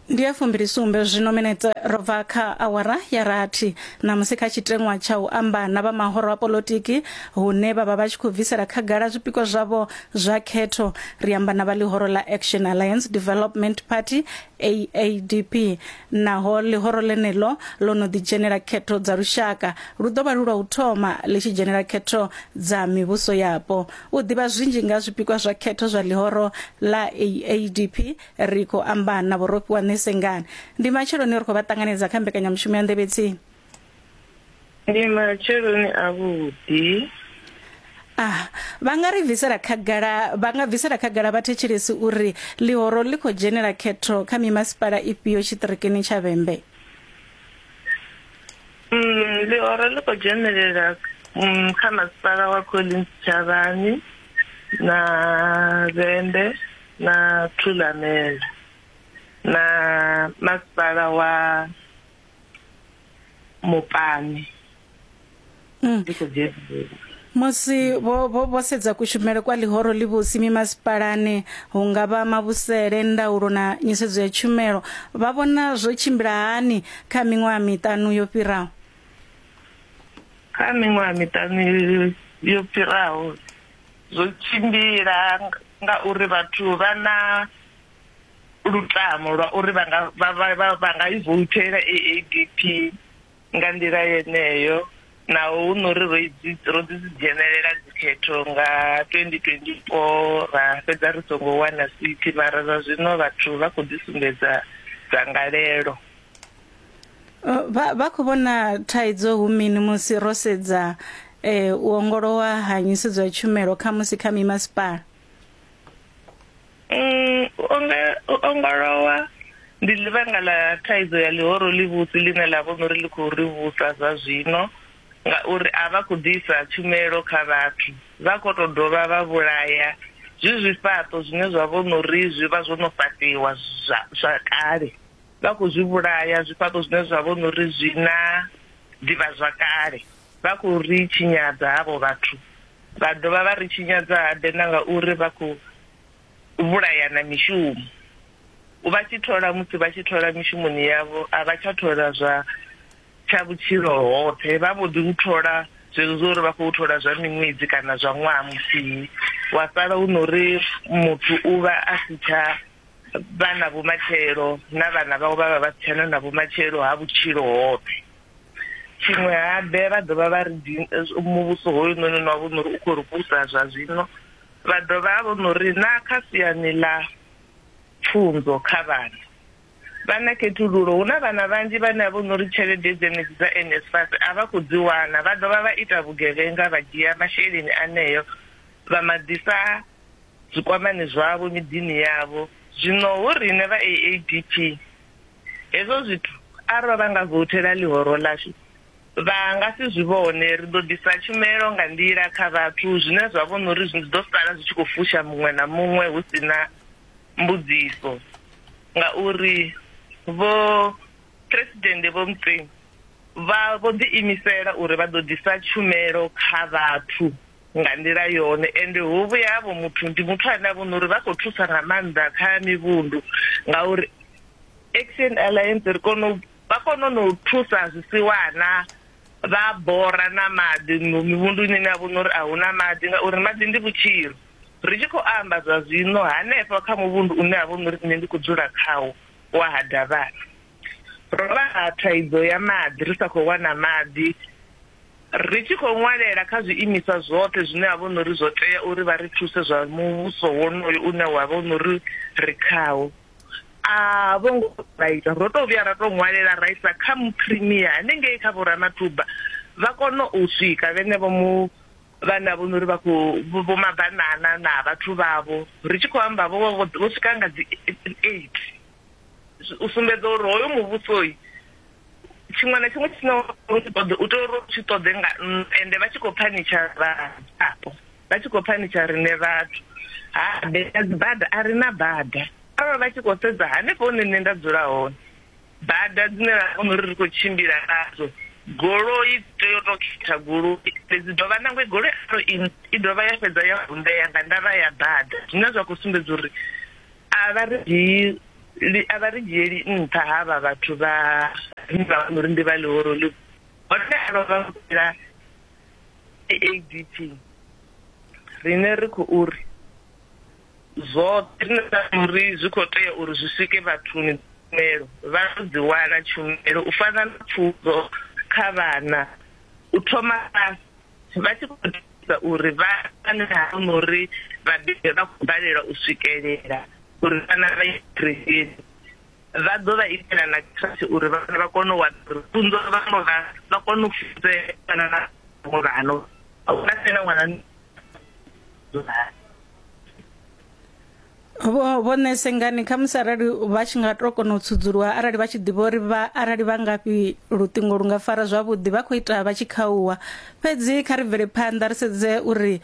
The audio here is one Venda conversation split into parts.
ndi ya fumbilisumbe zwino minetse ro bva kha awara ya rathi ṋamusi kha tshiteṅwa tsha u amba na vha mahoro a polotiki hune vha vha vha tshi khou bvisela khagala zwipikwa zwavho zwa khetho ri amba na vha ḽihoro ḽa action alliance development party aadp naho ḽihoro ḽeneḽo ḽo no ḓidzhenela khetho dza lushaka lu ḓo vha lu lwa u thoma ḽi tshi dzhenela khetho dza mivhuso yapo U ḓivha zwinzhi nga zwipikwa zwa khetho zwa ḽihoro ḽa ADP, ri khou amba na vhurofhiwa Ṋesengani. Ndi matsheloni ri khou vha ṱanganedza kha mbekanyamushumo ya Nḓevhe Tsini. Ndi matsheloni avhuḓi. Ah, vha nga ri bvisela khagala vha nga bvisela khagala vhathetshelesi uri ḽihoro ḽi khou dzhenela khetho kha mimasipala ifhio tshiṱirikini tsha Vhembe. Mm, ḽihoro ḽi khou dzhenelela mm, kha masipala wa collins tshavhani na vhembe na thulamela na masipala wa mupani mm. ḽi khou dzhenelela musi vho, vho, vho sedza kushumele kwa ḽihoro ḽivhusi mimasipalani hu nga vha mavhusele ndaulo na nyisedzo ya tshumelo vha vhona zwo tshimbila hani kha miṅwaha miṱanu yo fhiraho kha miṅwaha miṱanu yo fhiraho zwo tshimbila ngauri vhathu vha na lutamo lwa uri vha nga vha vha vha nga i voutela AADP nga nḓila yeneyo naho hu no ri ro dzi dzhenelela dzikhetho nga 2024 ra fhedza ri songo wana sithi mara zwa zwino vhathu vha khou ḓi sumbedza dzangalelo uh, vha vha khou vhona thaidzo hu mini musi ro sedza eh, u ongolowa ha nyisedzo ya tshumelo kha musi kha mimasipala Mm, u ongolowa ndi ḽivhanga ḽa thaidzo ya ḽihoro ḽivhusi ḽine ḽa vhono uri ḽi khou ri vhusa zwa zwino ngauri a vha khou ḓisa tshumelo kha vhathu vha khou tou dovha vha vhulaya zwi zwifhaṱo zwine zwa vhono uri zwi vha zwo no fhaṱiwa zwa kale vha khou zwi vhulaya zwifhaṱo zwine zwa vhono uri zwi na ḓivha zwa kale Vha khou ri tshinyadza havho vhathu, vha dovha vha ri tshinyadza habe na ngauri vha khou vhulayana mishumo. Vha tshi thola musi vha tshi thola mishumoni yavho a vha tsha thola zwa tsha vhutshilo hoṱhe, vha mbo ḓi u thola zwezwo zwa uri vha khou thola zwa miṅwedzi kana zwa ṅwaha muthihi, wa sala hu no ri muthu u vha a si tsha vha na vhumatshelo na vhana vhawe vha vha vha si tshena na vhumatshelo ha vhutshilo hoṱhe. tshiṅwe habe vha dovha vha ri muvhuso hoyu noni no vho nori u khou ri vhusa zwa zwino vha dovha vho nori na kha siani ḽa pfunzo kha vhana vha na khethululo hu na vhana vhanzhi vhane a vho nori tshelede dzenedzi dza NSFAS a vha khou dzi wana vha dovha vha ita vhugevhenga vha dzhia masheleni aneyo vha maḓisa zwikwamani zwavho miḓini yavho zwino hu rine vha AADP Hezwo zwithu arali vha nga vouthela ḽihoro ḽashu, vha nga si zwi vhone. Ri ḓo ḓisa tshumelo nga nḓila kha vhathu zwine zwa vhona uri zwi ḓo sala zwi tshi khou fusha muṅwe na muṅwe hu si na mbudziso ngauri Vho Phresidennde Vho Motseng vha vho ḓiimisela uri vha ḓo ḓisa tshumelo kha vhathu. nga nḓila yone ende hu vhuya havho muthu ndi muthu ane a vhona uri vha khou thusa nga maanḓa kha mivhundu ngauri action alliance ri kona vha kona no thusa zwisiwana vha bora na maḓi mivhundu ine ine a vhona uri a hu na maḓi ngauri maḓi ndi vhutshilo ri tshi khou amba zwa zwino hanefha kha muvhundu une a vhona uri nṋe ndi khou dzula khawo wa ha davhana Ro vha na thaidzo ya maḓi, ri sa khou wana maḓi. Ri tshi khou ṅwalela kha zwiimiswa zwoṱhe zwine ha vha hu no uri zwo tea uri vha ri thuse zwa muvhuso wonoyo une wa vha hu no uri ri khawo, a vho ngo vha ita. Ro tou vhuya ra tou ṅwalela ra isa kha muphirimiya hanengei kha Vho Ramathuba, vha kona u swika vhenevho mu vhane ha vha hu no uri vha khou vho mabanana na vhathu vhavho, ri tshi khou amba vho vha vho swika nga dzi eight. u sumbedza uri hoyo muvhusoi tshiṅwe na tshiṅwe tshine tshi ṱoḓe u tea uri tshi ṱoḓe nga ende vha tshi khou phanitsha vhaapo vha tshi khou phanitsha rine vhathu ha bea dzibada a ri na bada arali vha tshi khou sedza hanefho hune nṋe nda dzula hone bada dzine ra kona uri ri khou tshimbila nadzo goloi tea u tou khetha goloi fhedzi dovha nangwe goloi aro i dovha ya fhedza ya vunḓea nga ndavha ya bada zwine zwa khou sumbedza uri a vha ri dzhii a vha ri dzhieli nṱha ha vha vhathu vha rine vha vhona uri ndi vha ḽihoro ḽi hone a vha vha vhila adp rine ri khou uri zwoṱhe rine ra uri zwi khou tea uri zwi swike vhathuni tshumelo vha ḓo dzi wana tshumelo u fana na pfunzo kha vhana u thoma fhasi vha tshi khou ḓisa uri vha ane havho na uri vhabebi vha khou balelwa u swikelela uri vhana vha ye kerekeni vha ḓo vha itela na tshashe uri vhana vha kone u wana uri funzo vhaṅwe vha vha kone u funzea kana na vhaṅwe vhano a huna fhela ṅwana vho vho nese ngani kha musi arali vha tshi nga to kona u tsudzuluwa arali vha tshi ḓivha uri vha arali vha ngafhi luṱingo lu nga fara zwavhuḓi vha khou ita vha tshi khauwa fhedzi kha ri bvele phanḓa ri sedze uri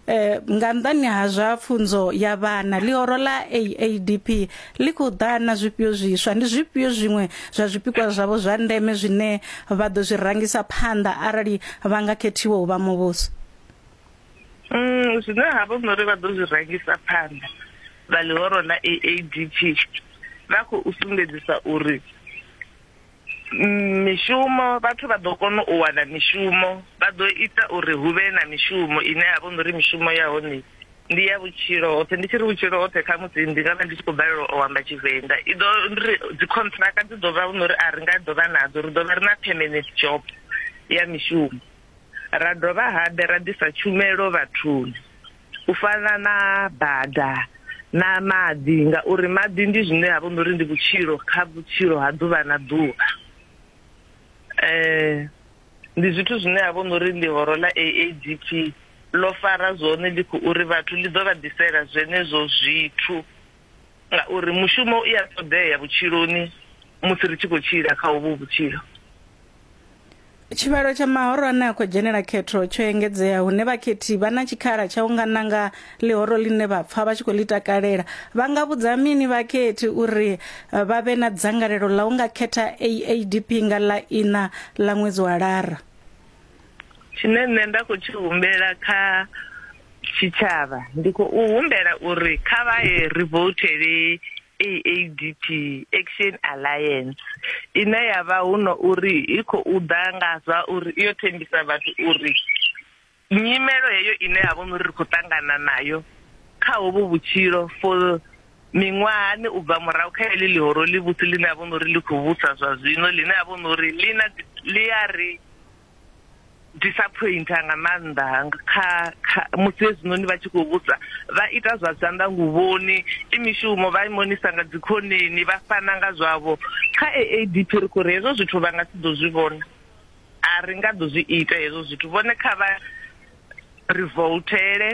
eh nga nḓani ha zwa pfunzo ya vhana ḽihoro ḽa AADP ḽi khou ḓa na zwifhio zwiswa ndi zwifhio zwiṅwe zwa zwipikwa zwavho zwa ndeme zwine vha ḓo zwi rangisa phanḓa arali vha nga khethiwa u vha muvhuso Mm, zwine ha vha uri vha ḓo zwi rangisa phanḓa vha ḽihoro ḽa AADP vha khou sumbedzisa uri mm, mishumo vhathu vha ḓo kona u wana mishumo vha ḓo ita uri hu vhe na mishumo ine ya vha uri mishumo ya hone ndi ya vhutshilo hoṱhe ndi tshi ri vhutshilo hoṱhe kha musi ndi nga vha ndi tshi khou balelwa u amba tshivenḓa i ḓo ri dzikhontraka dzi ḓo vha uri a ri nga ḓo vha nadzo ri ḓo vha ri na permanent job ya mishumo ra dovha habe ra ḓisa tshumelo vhathuni u fana na bada na maḓi ngauri maḓi ndi zwine ha vha uri ndi vhutshilo kha vhutshilo ha ḓuvha na ḓuvha um ndi zwithu zwine ha vha uri ndi horo ḽa aadp ḽo fara zwone ḽi khou uri vhathu ḽi ḓo vha ḓisela zwenezwo zwithu ngauri mushumo u ya ṱoḓea vhutshiloni musi ri tshi khou tshila kha uvhu vhutshilo. Tshivhalo tsha mahoro ane a khou dzhenela khetho tsho engedzea hune vhakhethi vha na tshikhala tsha u nga nanga ḽihoro ḽine vha pfa vha tshi khou ḽi takalela. Vha nga vhudza mini vhakhethi uri vha vhe na dzangalelo ḽa u nga khetha AADP nga ḽa iṋa ḽa ṅwedzi wa Lara? tshine nṋe nda khou tshi humbela kha tshitshavha ndi khou humbela uri kha vha ye ri voutele AADP Action Alliance ine ya vha hu no uri i khou ḓa nga zwa uri iyo thembisa vhathu uri nyimelo heyo ine ha vha uri ri khou ṱangana nayo kha hovhu vhutshilo for Miṅwahani u bva murahu kha heḽi ḽihoro ḽivhusi ḽine a vhona uri ḽi khou vhusa zwa zwino ḽine a vhona uri ḽi na ḽi a ri disaphointha nga maanḓa kha kha musi hezwinoni vha tshi khou vhusa vha ita zwa zwanḓa nguvhoni i mishumo vha imonisa nga dzikhoneni vha fana nga zwavho kha AADP ri khou ri hezwo zwithu vha nga si ḓo zwi vhona a ri nga ḓo zwi ita hezwo zwithu vhone kha vha ri voutele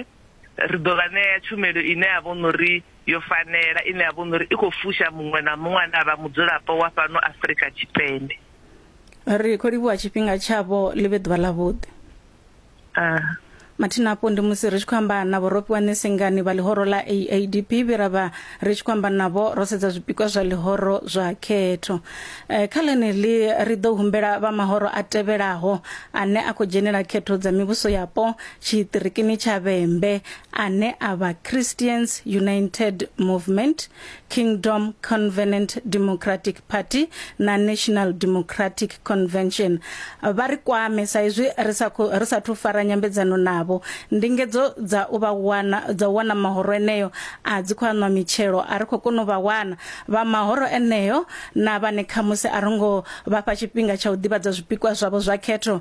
ri ḓo vha ṋea tshumelo ine ya vha uri yo fanela ine ya vha uri i khou fusha muṅwe na muṅwe ane a vha mudzulapo wa fhano Afrika Tshipembe ri khou livhuwa tshifhinga tshavho ḽi vhe ḓuvha ḽavhuḓi ah. mathina afho ndi musi ri tshi khou amba na vhorofhiwa ṋesengani vha ḽihoro ḽa aadp vhe ra vha ri tshi khou amba navho ro sedza zwipikwa zwa ḽihoro zwa khetho um kha ḽeneḽi ri ḓo humbela vha mahoro a tevhelaho ane a khou dzhenela khetho dza mivhuso yapo tshiṱirikini tsha vhembe ane a vha Christians United Movement, Kingdom Covenant Democratic Party na National Democratic Convention vha ri kwame sa izwi ri sa ri sa thu fara nyambedzano navho ndingedzo dza u vha wana dza u wana mahoro eneyo a dzi khou anwa mitshelo a ri khou kona u vha wana vha mahoro eneyo na vhane khamusi a rongo vha fha tshifhinga tsha u ḓivhadza zwipikwa zwavho zwa khetho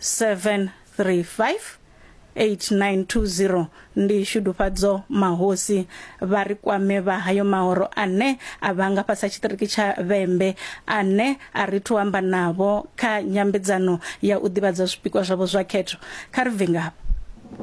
735 8920 ndi shudufhadzo mahosi vha ri kwame vha hayo mahoro ane a vha nga fhasi ha tshiṱiriki tsha vhembe ane a ri thu amba navho kha nyambedzano ya u ḓivhadza zwipikwa zwavho zwa khetho kha ri bve ngavho